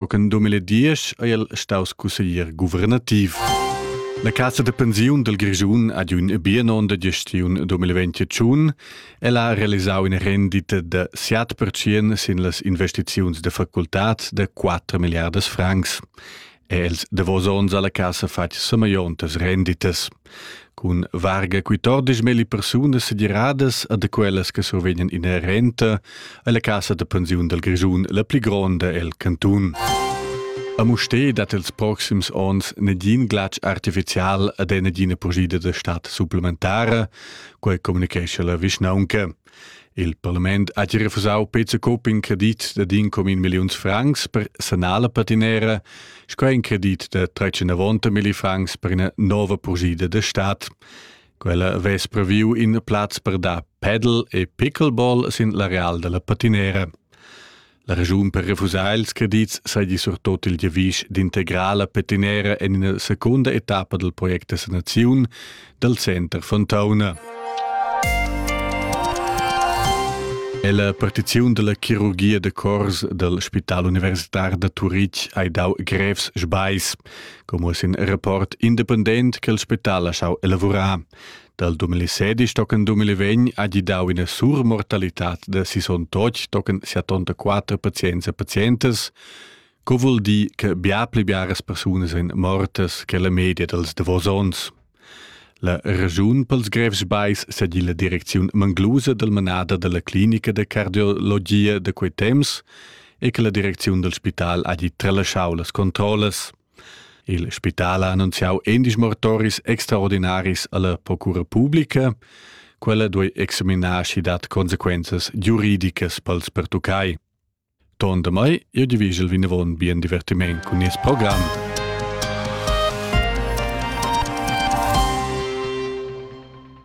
Co che en 2010 è el staus cusseglier guvernativ. La Cassa de pensiun del Grischun ha un biennon de gestiun 2021. El ha realisau una rendita de 7% sin las investiziuns de facultats de 4 miliardas francs. Els davos onns alla Cassa fatg sameiontas renditas. Cun varga quatordisch melli persunas segiradas a da quellas che survegnan ina renta è la casa da pensiun dal Grischun la pli gronda el cantun. A Musté dat els proxims onns negin glatsch artificial ad nagina pugida da stat supplementara, quai communicescha la vischnaunca. Il parlament ha gia refusau Peter Coop in credit da din com in milliuns francs per sanar la patinera, sco in credit da 390 milli francs per ina nova purgida da stat. Quella vess previu in plaz per dar paddle e pickleball sin l'areal della patinera. La regiun per refusar ils credits saigi surtot il giavisch d'integrala petinera en ina secunda etappa dal project da sanaziun dal center Fontauna. E la partiziun della chirurgia de cors del Spital Universitar da Turitg ha dau grevs sbais, como sin rapport independent che il spital ha schau elaborar. Dal 2016 tochen 2020 ha gidau ina surmortalitad da 68 tochen 74 pazients e pazientas, co vul dir che bia pli biaras persunas ein mortas che la media dals davos onns. La regiun pels grevs bais segi la direcziun manglusa del manada della clinica de cardiologia de quei temps e che la direcziun del spital hagi tralasciau las controllas. Il spital ha annunziau endisch mortoris extraordinaris alla procura publica. Quella duei examinar schi dat consequenzas giuridicas pels pertuccai. Ton da mai, io divigel vinavon bien divertiment cun nies program.